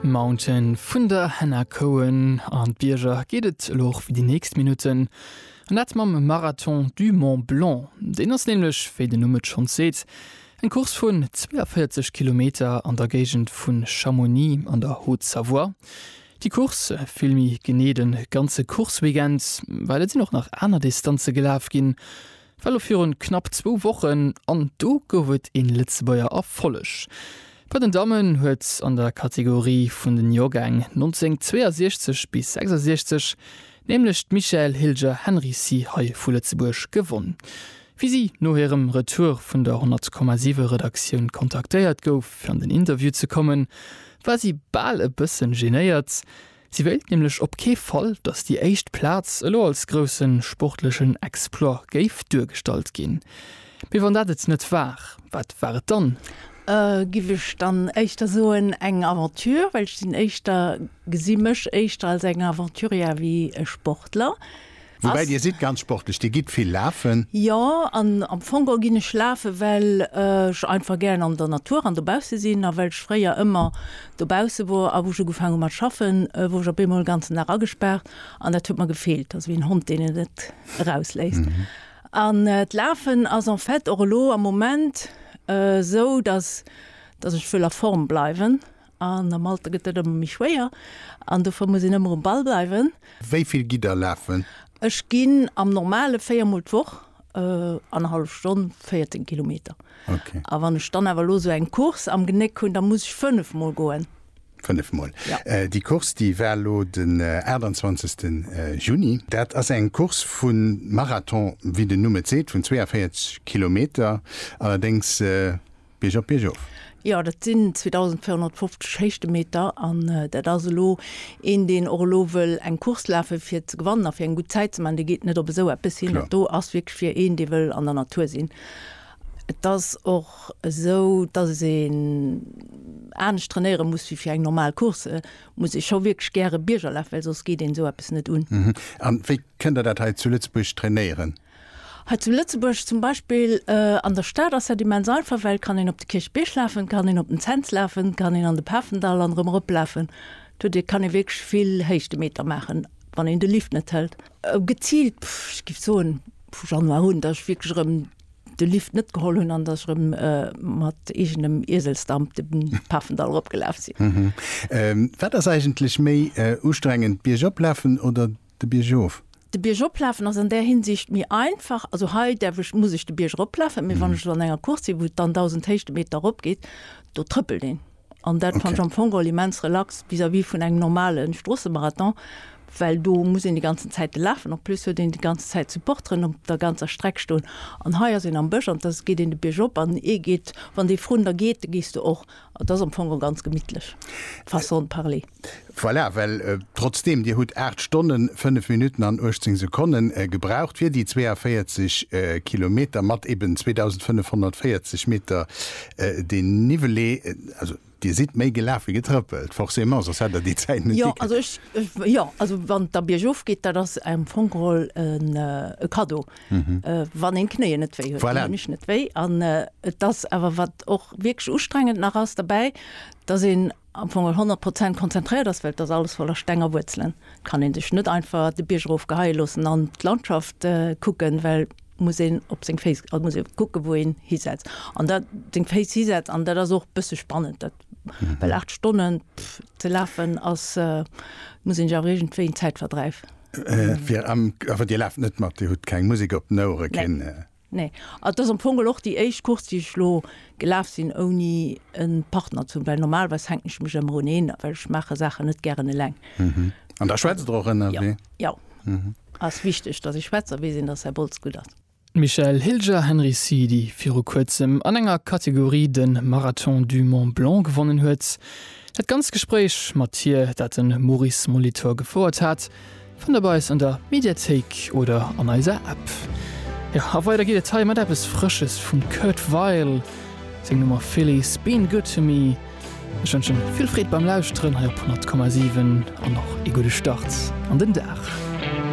Mountain vun der Hannah Cohen. An d'Bierger geet et elo och fir déi nächst Minutten. An dat mam Marathon du Mont Blanc. Deen ass nämlech, wéi den Numm et schonns seet, eng Course vun 42 Kilometer an der Géigend vu Chamonix an der Haute-Savoie. Déi Course, vill méi genee de ganze Course-Weekend, well et sinn och nach aner Distanze gelaf ginn, War lo virun knapp zwou Wochen an do gouf et een Lëtzebuerger Erfolleg. Bei den Dammen huet an der Kategorie vun den Jorgäng 1962 bis 66 nämlech d'Michaëlle Hilger Henricy hei vu Lëtzebuerg gewonn. Wéi si no hirem Retour vun der 100,7 Redaktioun kontaktéiert gouf fir an den Interview ze kommen, war si bal e bëssen genéiert, Si wéilt nämlech op kee Fall, datt déi éischt Plaz elo als grousse sportlechen Exploit géif duergestallt ginn. Mee wann dat et net war, wat war et dann? Giff ech dann éischter soen, eng Aventure, well ech sinn éischter, gesi mech éischter als eng Aventurière wéi e Sportler. Woubäi Dir sidd ganz sportlech, Dir gitt vill lafen. Jo, an am Fong geholl ginn ech lafen, well ech einfach gären an der Natur an dobausse sinn a well ech fréier ëmmer dobausse wor. A wou ech ugefaang hu mat schaffen, wor ech op eemol en ganzen Dag agespaart an dat huet mer gefeelt, also wéi en Hond, deen et net erausléisst. An d'Lafen ass en fait och elo am Moment esou, datt ech wëll a Form bleiwen An am Alter gëtt dat ëmmer méi schwéier an dofir muss een ëmmer um Ball bleiwen. Wéi vill gitt Der lafen? Ech ginn am Normale véier Mol d'Woch, annerhallef Stonn, 14 Kilometer. A wann ech dann awer elo esou eng Course am Genéck hunn, da muss ech fënnef Mol goen. Fënnef Mol. Déi Course, déi war elo den 28. Juni. Dat ass eng Course vu Marathon, wéi den Numm et seet, vun 42 Kilometer. Allerdéngs Bierg op, Bierg of. Jo, dat sinn 2.450 Héichtemeter an dat ass elo een, deen och elo wëll eng Course lafe fir ze gewannen a fir eng gutt Zäit ze maachen, dee geet net op esou eppes hin. Dat do ass wierklech fir een, dee wëll an der Natur sinn. Et ass och esou, datt een anescht trainéiere muss wéi fir eng normal Course. Et muss ee scho wierklech gäre Bierger lafen, well soss geet een esou eppes net un. An wéi kënnt Der dat hei zu Lëtzebuerg trainéieren? Hei zu Lëtzebuerg zum Beispill an der Stad ass dat immens einfach, well et kann een op de Kierchbierg lafen, et kann een op den Cents lafen, et kann een an de Pafendall an erëm eroplafen. Do dir kann ee wierklech vill Héichtemeter maachen, wann een de Lift net hëlt. Geziilt, ech géif soen vu Januar un, datt ech wierklech erëm de Lift net geholl hunn an datt ech erëm mat eegenem Ieselsdamp de Pafendall eropgelaf sinn. Wat ass eigentlech méi ustrengend, d'Bierg oplafen oder de Bierg of. De Bierg oplafen ass an där Hinsicht méi einfach, also hei däerf ech, muss ech de Bierg eroplafen, mee wann ech elo an enger Course sinn, wou et dann 1.000 Héichtemeter eropgeet, do trëppelt een. An dat fannt ech am Fong geholl immens relax vis-à-vis vun engem normale Stroossemarathon, well do muss een déi ganzen Zäite lafen. En plus huet een déi ganze Zäit Supporteren op der ganzer Streck stoen an hei ass een am Bësch an da geet een de Bierg op an ee geet, wann dee vrun der geet, da gees du och. Dat ass am Fong ganz gemittlech, façon de parler. Voilà, well trotzdeem Dir hutt 8 Stonnen, 5 Minutten an 18 Sekonnen gebraucht fir déi 42 Kilometer mat eben 2.540 Meter Dénivelé, also Dir sidd méi gelaf wéi getrëppelt, forcément, soss hätt Der déi Zäit net gikritt. Jo, also ech, jo, also wann et da biergof geet, dat ass am Fong geholl e Kaddo, wann een d'Knéien net wéi huet. Voilà. Déi hunn mech net wéi. An et ass awer, wat och wierklech ustrengend nach ass derbäi, dass een am Fong al 100 Prozent konzentréiert ass, well et ass alles voller Steng a Wuerzelen, et kann een sech net einfach de Bierg erof geheie loossen an d'Landschaft kucken, well muss een op seng Féiss, also muss ee kucke wou een hisetzt an dat seng Féiss hisetzt an dat ass och e bësse spannend dat, well 8 Stonne ze lafen ass, muss een sech awer iergendwéi en Zäitverdräif. Fir am, awer Dir laaft net mat, Dir hutt keng Musek op den Ouere, keen. Nee. An et ass am Fong geholl och déi éischt Course, déi ech elo gelaf sinn, ouni e Partner ze hunn, well normalerweis hänken ech mech ëmmer un een, well ech maache Saachen net gären eleng. An da schwätzt Der och ënnerwee? Jo. Ass wichteg, dass ech schwätz a weess een, dass Här Boltz gutt ass. Michèle Hilger Henry Si, déi viru kuerzem an enger Kategorie de Marathon du Mont Blanc gewonnen huet. Dat ganzt Gespréich mat hir, dat de Maurice Molitor gefouert hat, Fënnt der bei eis an der Mediathéik oder an eiser App. Jo, a weider geet et hei mat eppes Frësches vum Kurt Weill, seng Nummer Philly's Been Good To Me. Ech wënsche vill Freed beim Lauschteren hei op 100,7 an och ee gudde Start an den Dag.